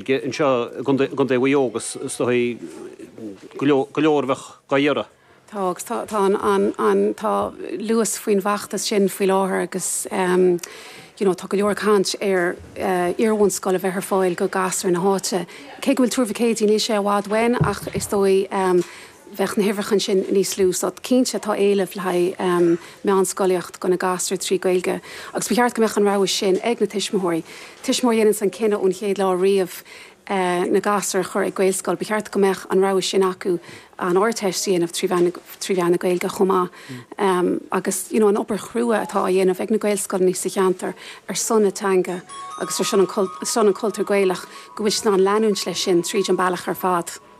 aige anseo i gContae Mhuigh Eo agus is dóigh go leor a bheadh dá iarraidh. Tá agus tá. Tá an, an, an, tá luas faoin bhfeachtas sin faoi láthair agus you know tá go leor ag caint ar iarbhunscoil a bheith ar fáil do ghasúir na háite. Cé go bhfuil Tuar Mhic Éadaigh, níl sé i bhfad uainn ach is dóigh, bheadh na huimhreacha ansin níos lú. So cinnte tá éileamh le haghaidh meánscolaíocht do na gasúir trí Ghaeilge agus ba cheart go mbeadh an rogha sin ag na tuismitheoirí. Tuismitheoir a dhéananns an cinneadh ón chéad lá riamh na gasúir a chur ag Gaelscoil ba cheart go mbeadh an rogha sin acu an Ardteist a dhéanamh trí mheán trí mheán na Gaeilge chomh maith agus you know an obair chrua atá á dhéanamh ag na Gaelscoileanna sa cheantar ar son na teanga agus ar son an cultúr Gaelach go bhfuil siad in ann leanúint leis sin tríd an bealach ar fad.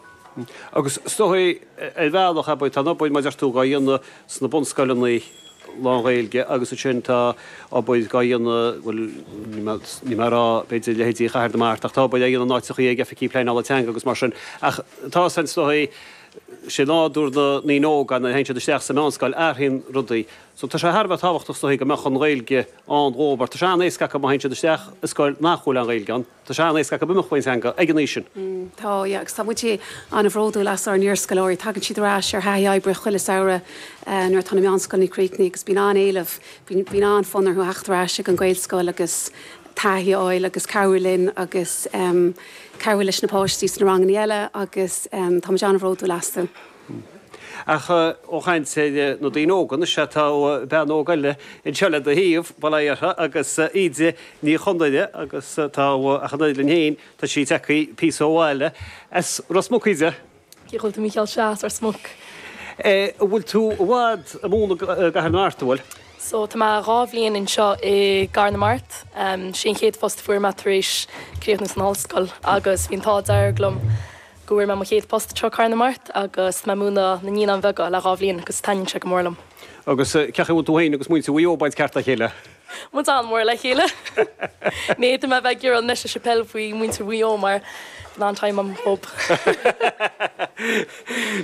Agus is dóigh ar bhealach abair tá an obair mar a deir tú dhá dhéanamh sna bunscoileanna lánGhaeilge agus ansin tá obair dhá dhéanamh, bhuel níl mé a' rá b'fhéidir leithéidí Chathair na Mart ach tá obair dhá dhéanamh in áiteachaí ag Oifigí Pleanála Teanga agus mar sin ach tá sé is dóigh i nádúr na ndaoine óga nuair a théann siad isteach sa meánscoil athraíonn rudaí so tá sé thar a bheith tábhachtach is dóigh go mbeadh an Ghaeilge ann dhóibh mar tá sé an-éasca acu má théann siad isteach i scoil nach bhfuil an Ghaeilge ann. Tá sé an-éasca acu imeacht ón teanga ag an aois sin. Tá, yeah, agus tá muid an-bhródúil as ár n-iarscoláirí. Tagann siad ar ais ar thaithí oibre chuile samhradh nuair atá na meánscoileanna ag críochnú agus bíonn an-éileamh, bíonn an-fhonn orthu a theacht ar ais ag an Ghaelscoil agus taithí a fháil agus cabhrú linn agus cabhrú leis na páistí sna rangannaí eile agus tá muid an-bhródúil astu. Ach ó chaint ar na daoine óga, anois sea tá bean óg eile anseo le do thaobh, bail ó Dhia uirthi, agus Íde Ní Chonaire agus tá, ach an oiread linn féin, tá sí ag teacht píosa ó bhaile. As Ros Muc, Íde? Cén chaoi a bhfuil tú Mícheál? Sea, as Ros Muc. Eh, an bhfuil tú i bhfad ag múineadh i gCathair na Mart, an bhfuil? So tá mé dhá bhliain anseo i gCathair na Mart. Sin é an chéad phost a fuair mé tar éis críochnú san ollscoil agus bhí an t-ádh dearg liom. go bhfuair mé mo chéad phost anseo i gCathair na Mart agus tá mé ag múineadh na Naíonáin Bheaga le dhá bhliain agus taitníonn sé go mór liom. Agus cén chaoi a bhfuil tú féin agus muintir Mhaigh Eo ag baint ceart dá chéile? Tá muid an-mhór le chéile. Ní fhéadfadh mé a bheith ag rá a leithéid faoi muintir Mhaigh Eo mar gheall ar an team.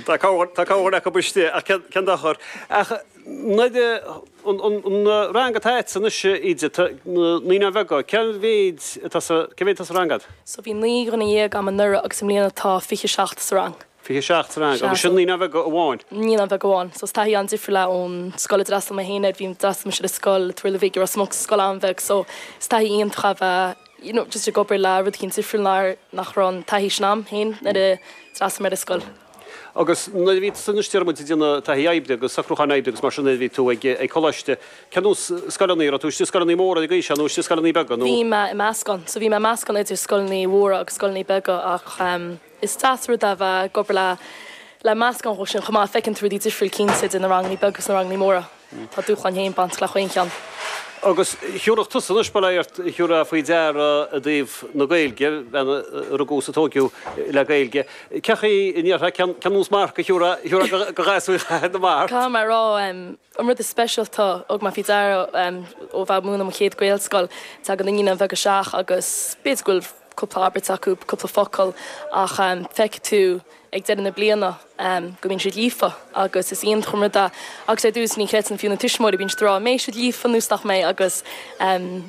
Tá cúpla acu istigh ach cén dochar. Ach nuair a. An rang atá agatsa anois, Íde, tá na Naíonáin Bheaga, cé mhéid atá sa, cé mhéid atá sa rang agad? So bhí naoi nduine dhéag a'm anuraidh agus i mbliana tá fiche seacht sa rang. Fiche seacht sa rang? Agus sin Naíonáin Bheaga amháin? Naíonáin Bheaga amháin. So is taithí an-difriúil é ón scoil a d'fhreastal mé féin air, bhí, d'fhreastal mise ar scoil an Turlaigh Bhig, i Ros Muc, scoil an-bheag so is taithí iontach a bhí ann you know just ag obair le rud éigin difriúil nár, nach raibh an taithí sin a'm féin nuair a d'fhreastal mé ar an scoil. Agus nuair a bhí tusa anois déarfaimid ag déanamh taithí oibre agus socrúcháin oibre agus mar sin nuair a bhí tú ag, ag coláiste, cén nós scoileanna a raibh tú? Istigh i scoileanna móra ag aois seo nó istigh i scoileanna beaga nó? Bhí mé i meascán. So bhí mé i meascán idir scoileanna mhóra agus scoileanna beaga ach em is deas rud é a bheith ag obair le, le meascán dhe sin chomh maith, feiceann tú rudaí difriúil cinnte idir na ranganna beaga agus na ranganna móra. Tá dúshláin féin bainte le chaon cheann. Agus thiúrfá tusa anois, bail ort, thiúrfá faoi deara i dtaobh na Gaeilge, bhean a rugadh is a tóigeadh le Gaeilge, cén chaoi a ndéarfá cén nós marc a thiúrfá, thiúrfá go ghasúir Chathair na Mart. Caithfidh mé a rá, an rud is speisialta a thug mé faoi deara ó bheith ag múineadh mo chéad Gaelscoil, tagann naíonáin bheaga isteach agus b'fhéidir go bhfuil cúpla abairt acu, cúpla focal ach feicfidh tú, ag deireadh na bliana go mbíonn siad líofa agus is iontach an rud é agus ar dtús ní chreideann fiú na tuismitheoirí bíonn siad a rá an mbeidh siad líofa nó nach mbeidh agus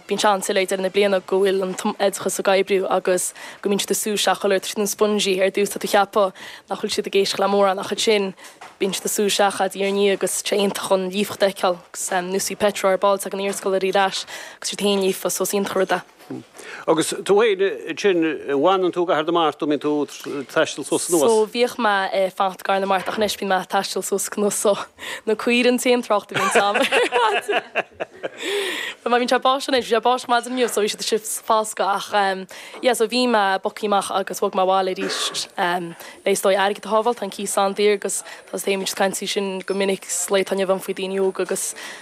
bíonn sé an-soiléir ag deireadh na bliana go bhfuil an t-oideachas ag oibriú agus go mbíonn siad ag sú isteach chuile rud ar nós sponge ar dtús tá tú ag ceapadh nach bhfuil siad ag éisteacht le mórán ach ansin bíonn siad ag sú isteach diaidh ar ndiaidh agus sé iontach an líofacht a fheiceáil agus nós bhí Petra ar ball ag an iarscoil ar ais agus siad féin líofa so is iontach an rud é. Hm. Agus tú fhéin ansin, bhfanann tú i gCathair na Mart nó bíonn tú ag taisteal suas is anuas? So, bhíodh mé ag fanacht i gCathair na Mart ach anois bíonn mé ag taisteal suas is anuas so, na caoirigh an t-aon trácht a bhíonns a'm ar mhaidin. Bhuel má bhíonn sé ag báisteach anois, bhí sé ag báisteach maidin inniu so bhí siad istigh foscadh ach ehm yeah so bhí mé bogthaí amach agus bhog mé abhaile aríst ehm le is dóigh airgead a shábháil, tá an cíos an-daor agus tá's, téimid is caintimid faoi sin go minic sa lá atá inniu ann faoi daoine óga agus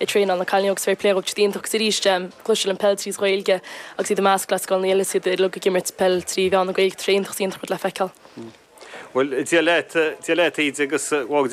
ag traenáil na cailíní agus bhí pléaráca iontach agus arís cloistear an pheil tríd ghaeilge agus iad i measc le scoileanna eile is iad uilig ag imirt peil trí mheán na gaeilge tá sé iontach is iontach rud le feiceáil. Bhuel, Dia leat, Dia leat Íde agus.